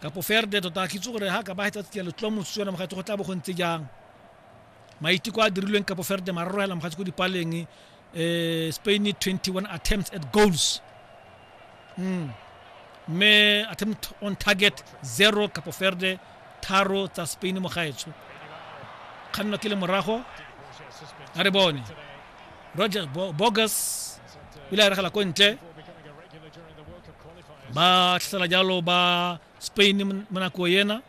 Kapoferde tota a kitse gore ha ka ba hetsa tsia letlo motse yona mogatsi go tla bo go ntse jang maiteko a dirilweng kapoferde mararo hela mogatsi ko dipaleng um spain 21 attempts at goals mm. mme attempt on target zero kapoferde tharo tsa spain mogaetsho kganno ke le morago a re bone roger bogus ile a regela ko ntle ba tlhasela jalo ba spain mo nako ena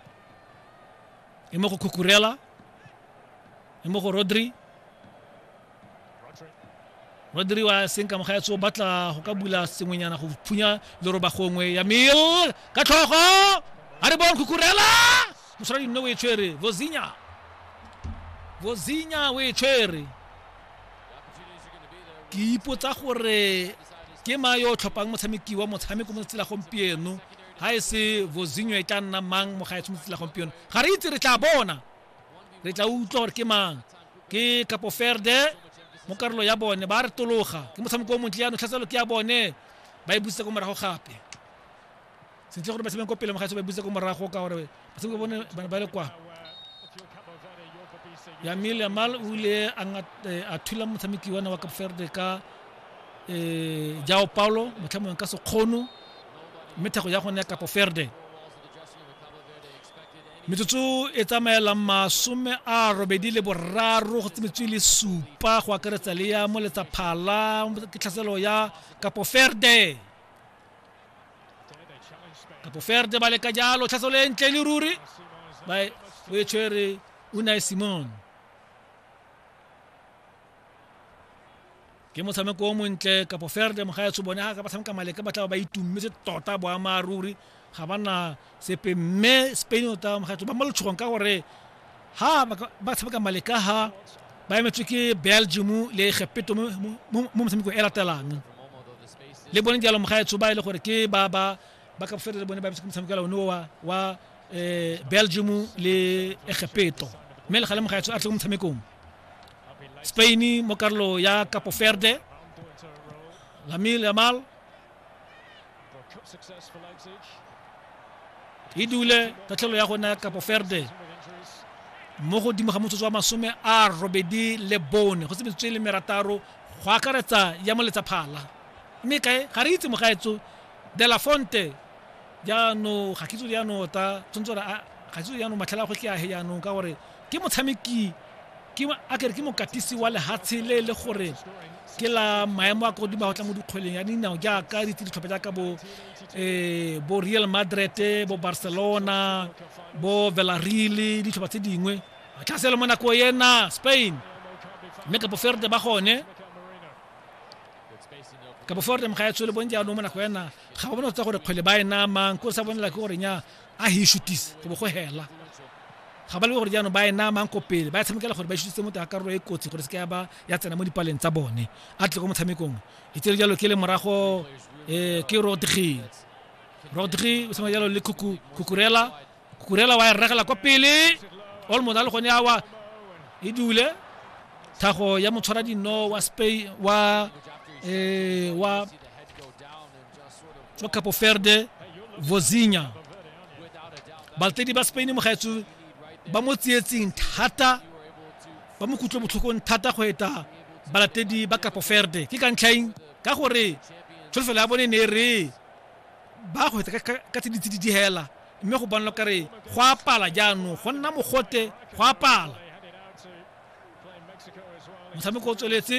e mo go khukurela e mo go rodri rodri wa senka moga ya tso batla go ka bula sengwenyana go phunya leroba gongwe ya mil ka tlhogo a re bon khukurela mosala dinno o e tshwere vozinya vozinya o e tshwere ke ipotsa gore ke ma yo o tlhophang motshameki wa motshameko mo tsela gompieno ga e se vozinyo e tla nna mang mo gaetsho mo tsela gompieno ga re itse re tla bona re tla utlwa gore ke mang ke kapo ferde mo karolo ya bone ba re tologa ke motshameko o montle yano tlhatselo ke ya bone ba e busitse ko morago gape sentle gore ba tshameke kwa pele mogaetso ba buse ko morago ka gore batshameki bone bana ba le kwa yamil yamal o ile eh, a thula motshameki wana wa capverde ka um eh, jao paulo motlhamong ka sekgono mme thego ya gone ya kapo ferde metsotso e tsamaelang masome a robedi le boraro go tsemetswe le supa go akaretsa le ya moletsa phala ke tlhaselo ya kapo ferde kapoferde ba leka jalo tlhatso le ntle le ruri ba e- o e tshwere unai simon ke motshameko o montle kapoferde mogaetsho bone ga ka ba tshameka maleka ba tla ba ba itummetse tota boammaaruri ga ba na sepe mme spain o tla makgetlo ba mo letshogong ka gore ha ba tshameka male ka ha ba emetswe ke belgium le gepeto mo motshamekong e latelang le bone jalo mogaetsho ba e le gore ke ba ba ba ka bofelo le bone ba emetswe ke motshameko la one wa wa um belgium le egepeto mme le ga le mogaetsho a tle ko motshamekong spain mo karolo ya capo verde lamil yamal e dule tatlhelo ya gona ya kapo ferde mo godimo ga motsotso wa masome a robedi le bone go se metsotso e le merataro go akaretsa ya moletsa phala mme kae ga re itse mogaetso de la fonte jaanong ga kitso jaanong ta tshwanetse gore ga kitso jaanong matlhela a gotlhe a he jaanong ka gore ke motshameki ke a kere ke mokatisi wa lehatshe le e le gore ke la maemo a kodimo go tla mo dikgweleng ya dinao jaaka ditse ditlhopha jaaka bo um bo real madrid bo barcelona bo velareal ditlhopha tse dingwe tlhaselo mo nako ena spain mme kapo ferde ba gone kapo forde mo ga e tshwele bone jaanong mo nako ena ga ba bone go tsa gore kgwele ba e namang ko sa bonela ke gore nya a hishutise go bo go hela ga ba le gore jaanong ba e namang ko pele ba e tshamekela gore ba šutse motho ya karolo e kotsi gore se ka ba ya tsena mo dipaleng tsa bone a tle ko motshamekong e tsere jalo ke le morago um ke rodri rodri o tshameka jalo le kukurela kukurela wa e regela kwa pele olmos a le gone awa e dule thago ya motshwara dino wa spain wa um wa tswa capo verde vozinya baltedi ba spain mo gaetsho ba mo tsietseng thata ba mo kutlwe botlhokong thata go eta balatedi ba capo verde ke ka ntlhaeng ka gore tsholofelo ya bone ne re ba go eta ka tse ditse di digela mme go bonwa kare go apala jaanong go nna mogote go apala motshameko o tsweletse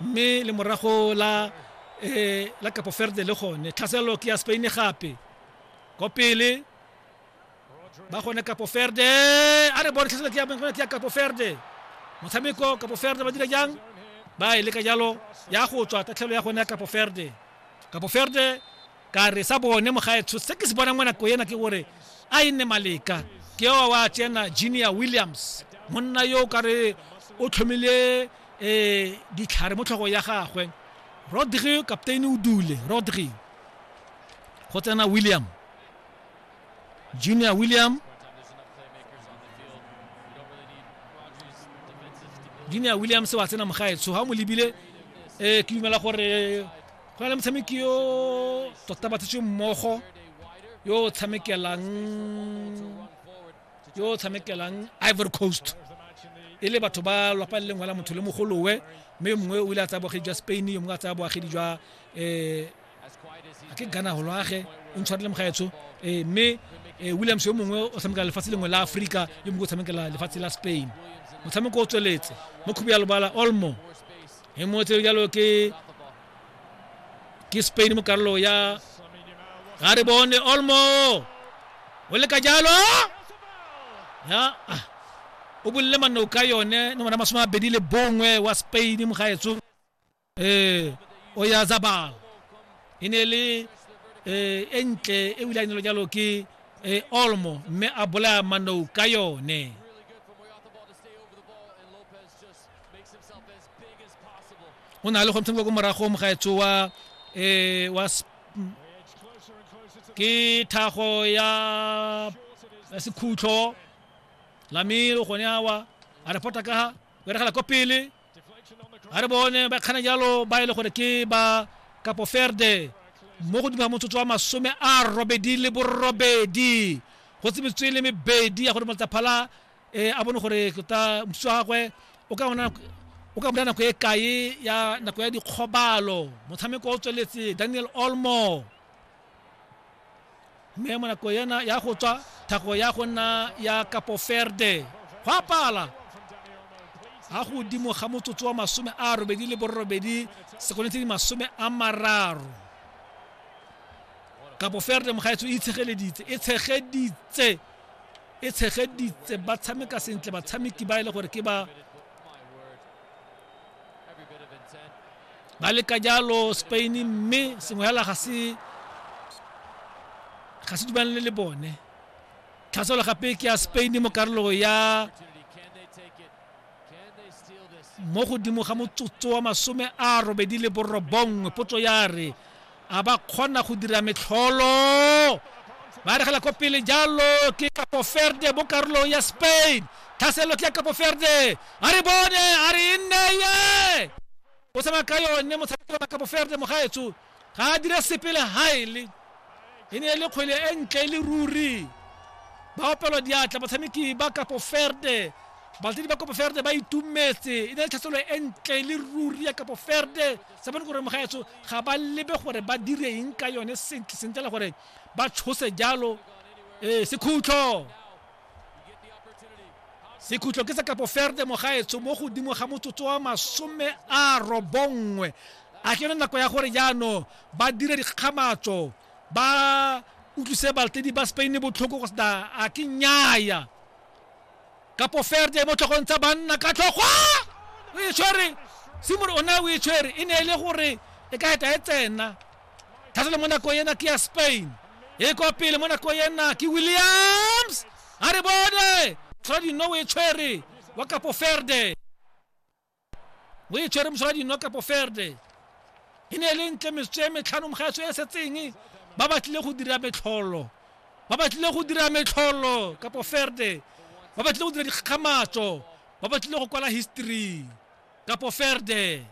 mme le morago la eh, la Capo Verde le gone tlhaselelo ke ya Spain gape ko pele ba gone Capo Verde a re bone tlhaselelo ke ya ke ya Capo Verde motshameko Capo Verde ba dira jang ba e leka jalo ya go tswa tatlhelo ya gone ya Capo Verde Capo Verde ka re sa bone mogaetsho se ke se bonang mo nako ena ke gore a e nne maleka ke wa wa tsena Junior Williams monna yo ka re o tlhomile eh ditlhare mo tlhogo ya gagwe rodri kapteini o dule rodri go tsena william junior william junior william se wa tsena mogaetsho ga o mo lebile um ke dumela gore go na le motshameki yo tota ba tshetse mmogo yo o tshamekelang yo o tshamekelang ivory coast e le batho ba lwapa le lengwe la motho le mogolowe mme yo mongwe o ile a tsaya boagedi jwa spain yo mongwe a tsaya boagedi jwa um ke gana go lwage o ntshware le mogaetsho um mme eh, williams yo mongwe o tshamekela lefatshe lengwe la aforika yo mongwe o tshamekela lefatshe la spain motshameko o tsweletse mo khubu ya lobala olmo e moetse jalo ke ke spain mo karolo ya ga re bone olmo o le ka jalo ya ah, o bolile manno ka yone no mona masome a bedi le bongwe wa spain mo gaetso eh o ya zabal e ne le eh e ntle e wile a nelo jalo ke eh, olmo mme a bolaya manno ka yone o na le go ntsengwa ko moragong gaetsho wa um wa ke thago ya sekhutlho lamelo gone awa a re pota ka ga beregela ko pele a re bone ba kgana jalo ba e le gore ke ba kapo ferde mo godimo ga motsotso wa masome a robedi le borobedi go tsebetswe le mebedi ya gore motsaphala a bone gore tota moswi wa gagwe o ka bona o ka bona nako e kae ya nako ya dikgobalo motshameko o tsweletse daniel olmo mme mo nako ena ya go tswa thago ya go nna ya kapo ferde go apala ga godimo ga motsotso wa masome a robedi le borobedi sekone tse di masome a mararo kapo ferde mogaetso e itshegeleditse e tshegeditse e tshegeditse ba tshameka sentle batshameki ba e le gore ke ba ba leka jalo spain mme sengwe fela ga se ga se dumalane le bone tlhaselo gape ke ya spain mo karolo ya mo godimo ga motsotso wa masome a robedi le borobongwe potso ya re a ba kgona go dira metlholo ba regela ko pele jalo ke kapo ferde mo karolong ya spain tlhaselo ke ya kapo ferde a re bone a re e nne ye o tsamaya ka yone motshameko wa kapo ferde mogaetso ga a dire sepe le gaele e ne e le kgwele e ntle e le ruri ba opelwa diatla batshameki ba kapo ferde balatedi ba kapo ferde ba itumetse e ne le tlhaselo e ntle e le ruri ya kapo ferde sa bone gore mogaetso ga ba lebe gore ba dire eng ka yone sentle sentle le gore ba tshose jalo ee sekhutlho sekhutlo ke sa kapoferde mogaetsho mo godimo ga motsotso wa masome a robongwe a ke yone nako ya gore jaanong ba dire dikgamatso ba utlwise baltedi ba spain botlhoko go sena a ke nyaya kapoferde mo tlhogong tsa banna ka tlhogwa o e tshwere simore o ne o e tshwere e ne e le gore e ka eta e tsena thata le mo nako ena ke ya spain e kwa pele mo nako ena ke williams a re bone mosola dino o e tshwere wa kapo ferde o e tshwere mosola dino kapo ferde e ne e le ntle metsotso e metlhano mogaetsho e setseng ba batlile go dira metlholo ba batlile go dira metlholo kapo ferde ba batlile go dira dikgakgamatso ba batlile go kwala history kapo ferde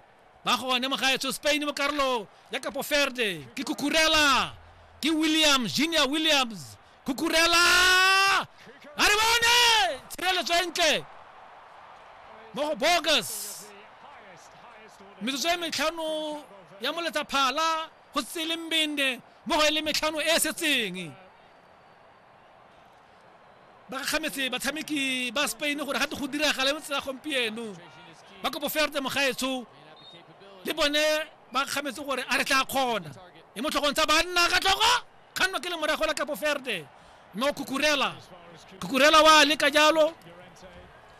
ba gone mo gaetsho spain mo karolo ya kapo ferde ke kukurela ke williams junior williams kukurela a re bone tshireletso e ntle mo go bogus metsotso e metlhano ya moletsa phala go tsele mbende mo go e le metlhano e e setseng ba gakgametse batshameki ba spain gore gate go diragala mo tsela gompieno ba kopo ferte mogaetsho le bone ba gakgametse gore a re tla kgona e mo tlhogong tsa banna ka tlhogo kganno ke le morago la kapo ferte mo kukurela kukurela wa leka jalo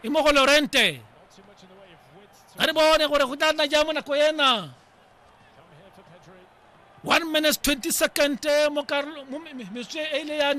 e mo go lorente a re bone gore go tla nna jang mo nako ena one minutes 20 second mo metswe e ile ya